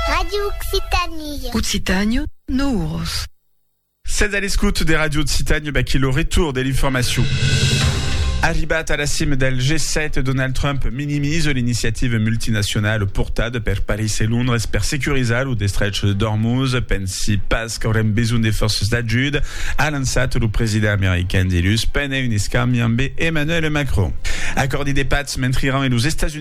Radio Occitanie. Occitània, Nouros. Sètz a l'escout de Radio Occitània, baquí lo retour de l'informacion. Arribat a la cima del G7, Donald Trump minimise l'iniciativa multinacionala portada per París e Londres per securizar lo destrech de Dormuz. Pensi pas qu'aurem besoin de forces d'ajuda, a lançat lo president american dilhus pendent un escambi amb Emmanuel Macron. Acordi de pats mentre Iran e los Estats Units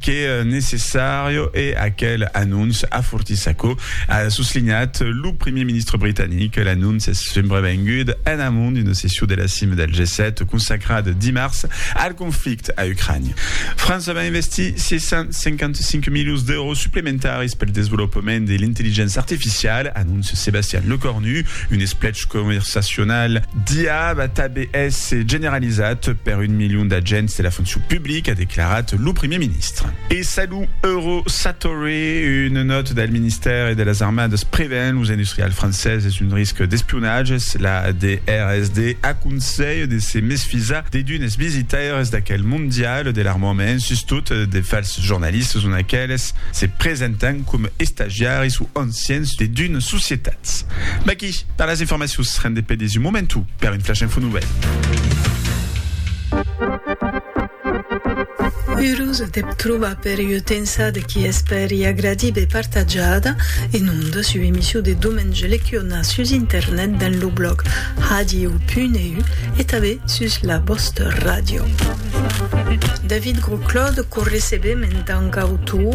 que necessària e aquel anonç afortís aquò, a soslinhat lo primièr ministre britanic. L'anonç es subrevengud en amont d'una session de la cima del G7 consacrada dimars al conflicte a Ucrània. França va investir 655 milions d'èuros suplementaris pel desvolopament de l'intelligéncia artificiala, anóncia Sébastien Lecornu. Un esplech conversacional d'IA va tanben èsser generalizat per un milion d'agents de la foncion publica. qu'a declarat lo primièr ministre. E salut Euro Satori, una nòta del ministèri de las Armadas prevèn los industrials franceses d'un risc d'espionatge, la DRSD aconselha de se mesfisar de d'unes visitaires d'aquel mondial de l'armament, sustot de falses jornalistes ont aqueles se presentan coma estagiaris o anciens de d'unes societats. I per las informacions rende pè desu momentu per un flash info nouvèl. Urós de p trobar per ua tensa de qui espèri agradir be partajada en ondas ua emission de Domenge Lecuona sus internet dens lo blòg radio.eu e tanben sus la vòsta ràdio. David Grosclaude qu'o recebem en tant qu'autor,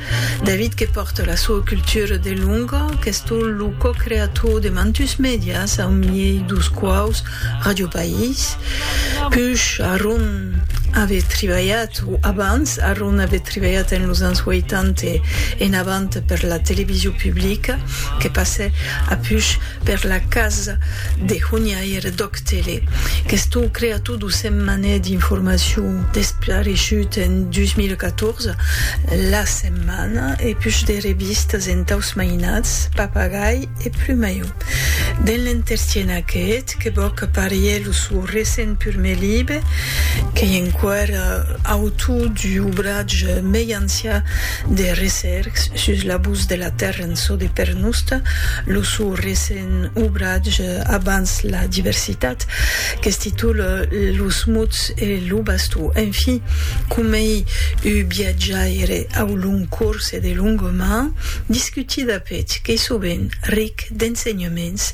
David que pòrte la soa cultura de longa, qu'estó lo co-creator de mantus mèdias au miei dos quaus Ràdio País, push arron ave tribalhat o abans arron ave tribalhat en los ans 80 e en avant per la television publica, que passè apush per la casa de honiaire d'Òc. Tele. Questo creator do Setmanè d'informacion despareishut en 2014, La Setmana, e push de revistas entaus mainats Papagai e Plumayo. Dens l'entertien aqueth que vòc aparier lo sò recent purme libe, qu'ei enquèr autor d'ubratge mei ancian de recercs sus l'abús de la tèrra, cançon de Pernosta, lo sou recent obratge Abans la diversitat, que es titol Los mots e lo bastó. Enfin, comei uu biatjaire au long corse de longa man, discuti dapet qu'ei sovent ric d'ensenhaments,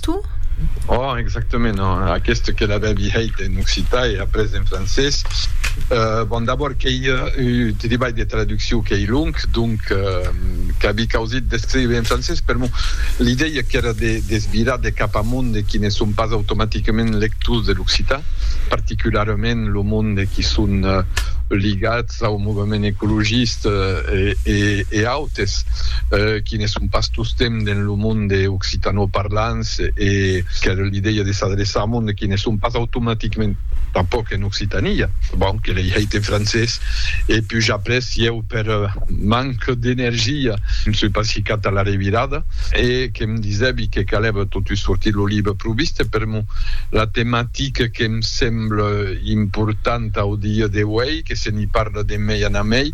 Tu? Oh, exactament, oh, aqueste que l'avèvi hèit en occitan e après en francés. Euh, bon, d'abord qu'ei un tribalh de traduccion qu'ei long, donc qu'avi causit d'escriure en francés, per mon, l'idèia qu'èra de desvirar de cap a monde qui ne son pas automaticament lectors de l'occitan, particularament lo monde qui son ligats, au movement ecologiste e autes qui ne son pas tostemps dens lo monde occitanoparlants e qu'èra l'idèia de s'adreçar au monde qui ne son pas automaticament tanpòc en Occitània. Bon, que lei hèit en francés e puja après si eu per manca d'energia ne soi pas ficat a la revirada e que'm disèvi que calèva totun sortir lo libre pro vista per mon la tematica que'm semble L'important au dia d'auei que se n'i parla de mei en amei,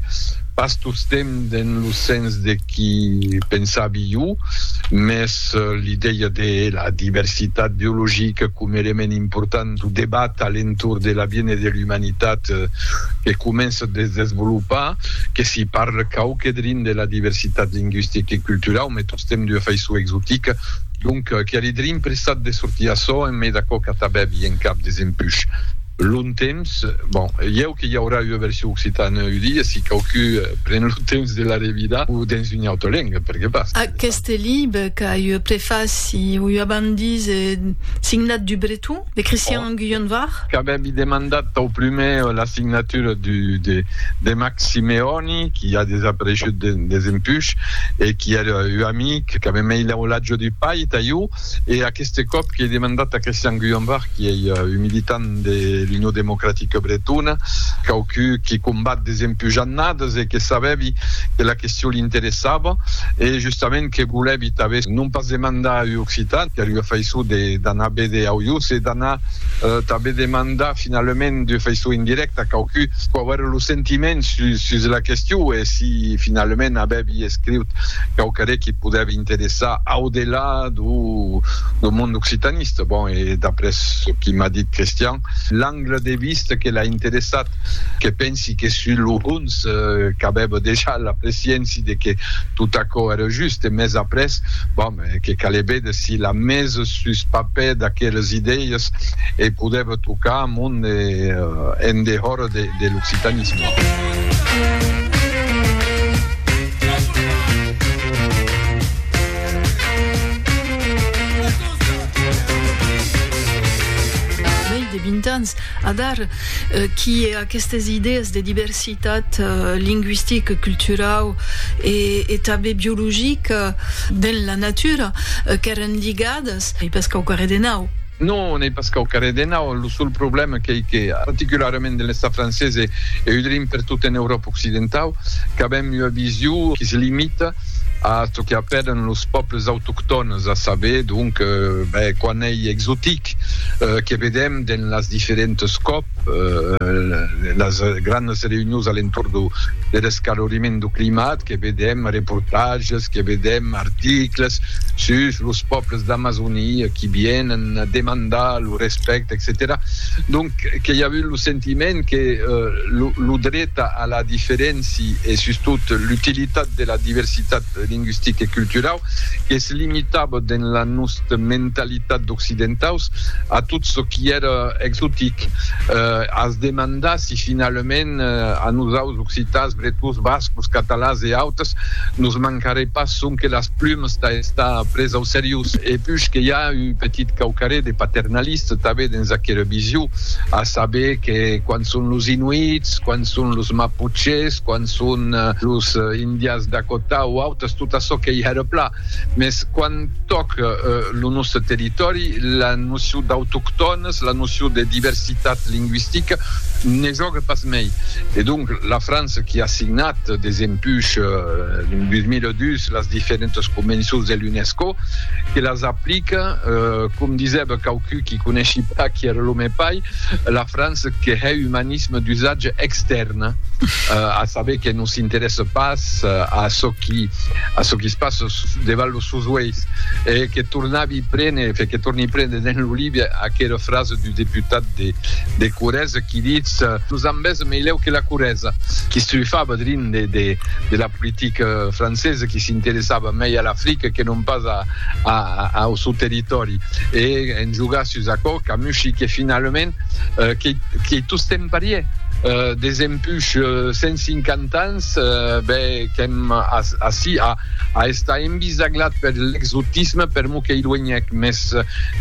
pas tostemp dens lo sens de qui pensavi jo, mès l'idèia de la diversitat biologica com element important dau debat a l'entorn de l'aviènir de l'umanitat que comença a desvolopar, que s'i parle quauque drin de la diversitat lingüistica e culturau, Stem d'ua faiçon exotica, donc qu'a le drin pressat de sortir açò en me d'aquò qu'a tabèbi en cap des empuch lon temps. Bon, ieu que i aurà ua version occitana un dia, si quauqui pren lo temps de la revidar, o dens una auta lenga, per que pas. Aqueste libre qu'a ua prefaci o ua bandise signat du Breton. De Christian Guyon-Var. Qu'avèvi demandat tau prumèr la signatura du, de, de Max Simeoni, qui a desapareishut de, desempush, e qui èra ua amic, qu'avè mei l'aulatge du pair tà iu, e aqueste còp qu'ei demandat tà Christian Guyon-Var, qui ei un militant de l'Union Democratique Bretona, quauqui qui combat desempush annades e que savèvi que la question l'interessava, e justament que volèvi tanben non pas demandar a un occitan, qu'èra ua faiçon de d'anar véder au Ius e d'anar tanben demandar finalament d'ua faiçon indirècta quauqui pò aver lo sentiment sus sus la question e si finalament avèvi escriut quauquarre qui podèvi interessar au delà do do mond occitanista. Bon, e d'après çò qui m'a dit Christian, l'angle de vista que l'a interessat, que pensi que sus lo hons qu'avèva dejà la presciéncia de que tot aquò èra just e mès après, bon, Que calè véder si la mes sus papèr d'aqueles idèies e podèva tocar a mon en dehòra de l'occitanisme. Diversitat lingüistic, culturau e tanben biologic dens la natura qu'èren ligadas. N'ei pas quauquarre de nau. Non, n'ei pas quauquarre de nau. Lo sol problèma qu'ei que, particularament dins l'Estat francés e eu dirim per tot en Euròpa occidentau, qu'avèm ua vision qui se limita a çò que apèlan los pòbles autoctònes, a saber, donc, ben, quan ei exotic, que vedèm dins las diferentes còp. las grandas reünions a l'entorn de l'escaloriment du climat que vedèm reportatges, que vedèm articles sus los pòbles d'Amazonia qui vienen demandar lo respècte, etcetèra Donc que i a avut lo sentiment que lo dret a la diferéncia e sustot l'utilitat de la diversitat lingüistica e culturau es limitava dens la nòsta mentalitat d'occidentaus a tot çò qui èra exotic. As demandar si finalament a nosaus occitans, bretons, bascos, catalans e autres nos mancarè pas sonque las plumas tà estar pres au seriós. E puish que i a un petit quauquarré de paternalista tanben dens aquera vision, a saber que quan son los Inuits, quan son los Maputches, quan son los Indians Dakota o autres, es tot açò que i a de plan, mès quan tòca lo nòste territòri, la nocion d'autoctònes, la nocion de diversitat lingüistica ne jòga pas mei. E donc, la França qui a signat desempuish 2002 las diferentas convencions de l'UNESCO, que las aplica, com disèba quauqui qui coneshi pas qui èra lo me pair, la França que hè umanisme d'usatge extèrne, a saber que s'interèsse pas a çò qui a çò qui se passe devant los seus uèis e que tornavi prene fe que torni prene dins lo libre aquera frasa du deputat de de Corrèze qui ditz los ambèz meleu que la Corrèza qui s'ufava drin de de de la politica francesa qui s'interessava mei a l'Africa que non pas a a au seu territòri e en jogar sus aquò Camushi que finalament qu'ei qu'ei tostemps parièr des Push 150 ans, be qu'èm ací a estar envisaglat per l'exotisme, per mot qu'ei luenhèc, mès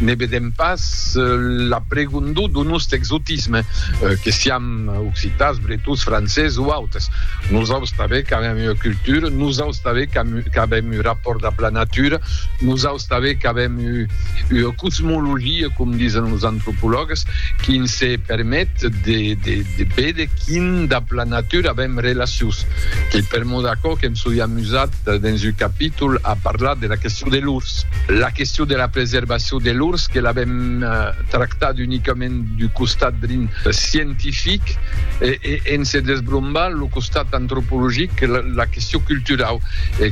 ne vedèm pas la pregondor d'un ost exotisme, que siam occitans, bretons, francés o autes. Nosaus tanben qu'avèm ua cultura, nosaus tanben qu'avèm un rapòrt dab la natura, nosaus. Sabe qu'avèm ua cosmologia, com disen los antropològas, qui ens permet de véder quin dab la natura avèm relacions. Qu'ei per mò d'aquò que em soi amusat dens un capítol a parlar de la question de l'urs. La question de la preservacion de l'urs que l'avèm tractat unicament d'un costat drin scientific e en se desbrombar lo costat antropologic, la question culturau,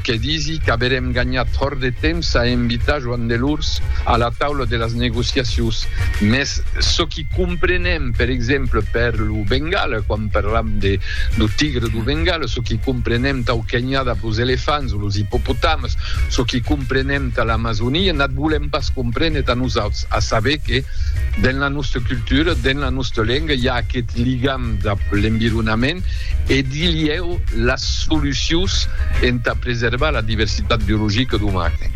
que disi, Qu'averem ganhat fòrt de temps a envitar Joan Delors a la taula de las negociacions, mès çò qui comprenem, per exemple, per lo Bengala, quan parlam de lo tigre du Bengala, çò qui comprenem tau Kenya dab los elefants o los ippopotams, çò qui comprenem ta l'Amazonia, n'ath volem pas comprene ta nosauts, a saber que dens la nòsta cultura, dens la nòsta lenga, i a aqueth ligam dab l'environament e, Dilhèu las solucions entà preservar la diversitat biologica d'Omaque.